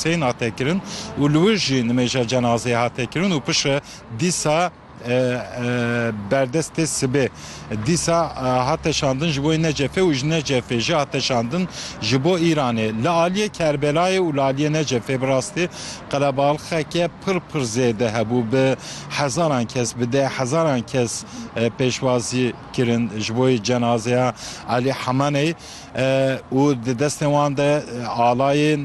Seyên hate kirin û li wir jî nimêja cenazeyê hate kirin û piştre dîsa berdestê sibê dîsa hate şandin ji bo Necefê û ji Necefê jî hate şandin ji bo Îranê. Li aliyê Kerbelayê û li aliyê Necefê bi rastî qelebalxeke pir pir zêde hebû. Bi hezaran kes, bi deh hezaran kes pêşwazî kirin ji bo cenazeya Elî Hemaneyê. û di destên wan de alayên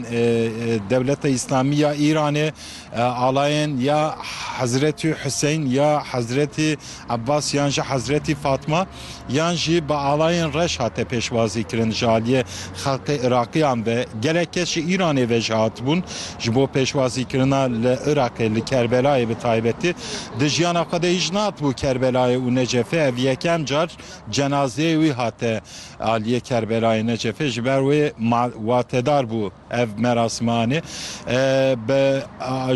Dewleta Îslamî ya Îranê, alayên ya Hezretî Huseyn ya Hezretî Ebas yan jî Hezretî Fatma yan jî bi alayên reş hate pêşwazî kirin. Ji aliyê xelkê Iraqiyan ve gelek kes ji Îranê ve jî hatibûn ji bo pêşwazîkirina li Iraqê li Kerbelayê bi taybetî. Di jiyana xwe de hîç nehatibû Kerbelayê û Necefê ev yekem car cenazeyê wî hate Aliyê Kerbelayê Necefê ji ber wê watedar bû ev merasimanê. Bi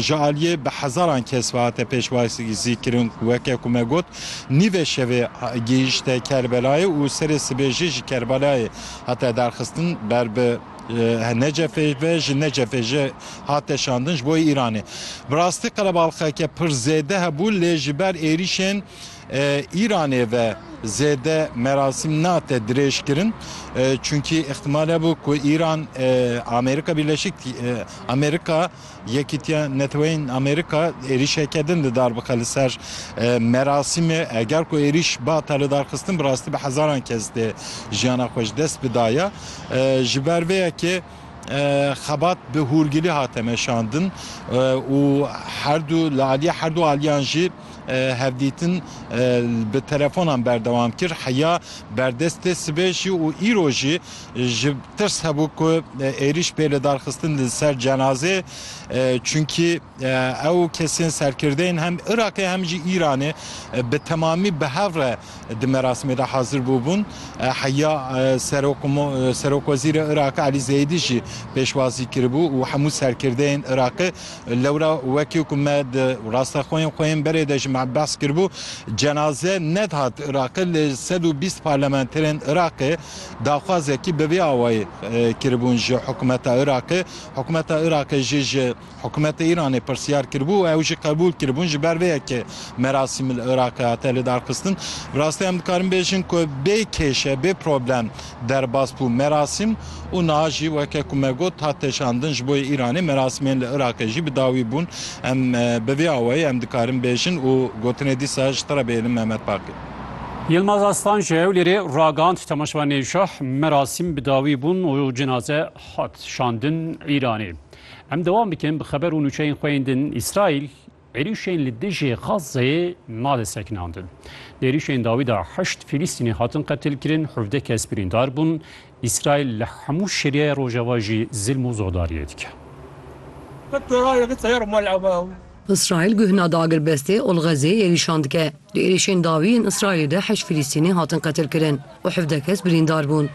ji aliyê bi hezaran kes ve hate pêşwazîkirin ku weke ku me got nîvê şevê gihîşte Kerbelayê û serê sibê jî ji Kerbelayê hate derxistin ber bi Necefê ve ji Necefê jî hate şandin ji bo Îranê. Bi rastî qelebalxeke pir zêde hebû lê ji ber êrîşên Îranê ve zêde merasîm nate dirêjkirin çunkî îxtîmal hebû ku Îran Amerîka Bîrleşik Amerîka Yekîtiya Neteweyên Amerîka êrîşeke din li dar bixe li ser merasîmê eger ku êrîş bata lidarxistin bi rastî bi hezaran kes dê jiyana xwe ji dest bidaya ji ber vê yekê Xebat bi hûrgilî hate meşandin û herdu li aliyê herdu aliyan jî hevdîtin bi telefonan berdewam kir. Heya berdestê sibê jî û îro jî ji tirs hebû ku êrîş bê lidarxistin li ser cenazeyê. Çunkî. Ew kesên serkirdeyên hem Iraqê hem jî Îranê bi temamî bi hev re di merasimê de hazir bûbûn. Heya Serokwezîrê Iraqê Elî Zeyidî jî pêşwazî kiribû û hemû serkirdeyên Iraqê lewra wekî ku me di rasteqoyên xwe yên berê de jî me behs kiribû cenaze nedihat Iraqê lê sed û bîst parlamenterên Iraqê daxwazekî bi vê awayî kiribûn ji hikûmeta Iraqê. Hikûmeta Iraqê jî ji Hikûmetê Îranê pirsyar kiribû û ew jî qebûl kiribûn. Ji ber vê ye ke merasîm li Iraqê hate lidarxistin. Bi rastî em dikarin bêjin ku bê kêşe, bê problem derbas bû merasîm û niha jî weke ku me got hat teşandin ji bo Îranê merasîmên li Iraqê jî bi dawî bûn. Em bi vî awayî em dikarin bêjin û gotinê dîsa ji te re bihêlin Mehmet Baqî. Yilmaz Aslan ji Hewlêrê ragihand Temaşevanê Şah merasîm bi dawî bûn û cenaze hat şandin Îranê. Em dewam dikin bi xeber û nûçeyên xwe yên din. Îsraîl êrîşên li dijî Xazzeyê nade sekinandin. Di êrîşên dawî de heşt Fîlîstînî hatin qetilkirin, hevdeh kes birîndar bûn. Îsraîl li hemû Sûriyeyê rojeva jî zilm û zodariyê dike. Îsraîl guhna di agirbestê Olxezê êrîşan dike. Di êrîşên dawî yên Îsraîlê de heşt Filîstînî hatin qetilkirin û hevdeh kes birîndar bûn.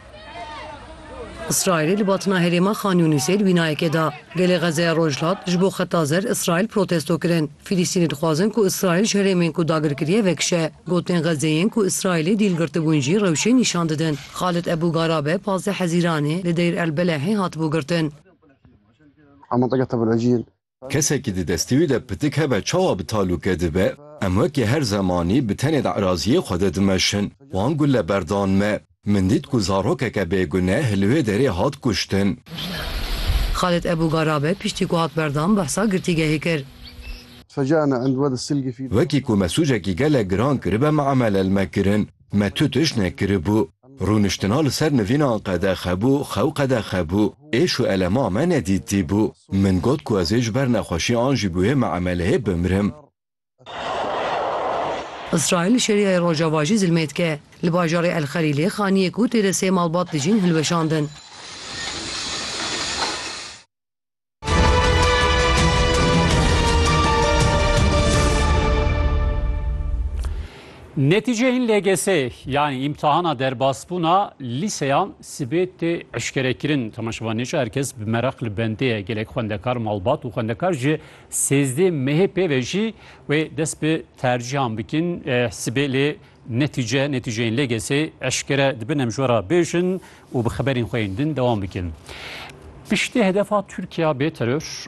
Îsraîlê li batina herêma Xan Yûnîsê li wînayekê da, Gelê Xezeya Rojhilat ji bo Xeta Zer Îsraîl protesto kirin. Filîstînî dixwazin ku Îsraîl ji herêmên ku dagir kiriye vekişe. Gotin Xezê yên ku Îsraîlê dîl girtibûn jî rewşê nîşan didin. Xalid Ebû Garabe pazdeh Hezîranê li Deyr El Belehê hatibû girtin. Kesekî di destê wî de pitik hebe çawa bi talûke dibe? Em wekî her zemanî bi tenê di eraziyê xwe de dimeşin. Wan gule berdan me. Min dît ku zarokeke bêgune li wê derê hat kuştin. Xalid Ebû Garabe piştî ku hat berdan behsa girtîgehê kir. Wekî ku me sûcekî gelek giran kiribe me emelelme kirin. Me tu tiştek kiribû. Rûniştina li ser nivîna qedexe bû, xew qedexe bû. Êş û elema me ne dîtî bû. Min got ku ez ê ji ber nexweşî an jî bi wê miameleyê bimirim. Îsraîl li Şêriyayê Rojava jî zilmê dike. Li bajarê El Xelîlê xaniyê ku tê de sê malbat dijîn hilweşandin. Netîceyên LGS'ê yanî îmtihana derbasbûna lîseyan sibê tê eşkerekirin. Temaşevan Nêçe herkes bi meraq li bendê ye. Gelek xwendekar, malbat û xwendekar ji sêzdê mehê pê ve jî wê dest bi tercîhan bikin. Sibê lê Netîce, netîceyên LGS'ê eşkere dibin em ji we re bêjin û bi xeberên xwe yên din dewam bikin. Piştî hedefa Tirkiya bê teror,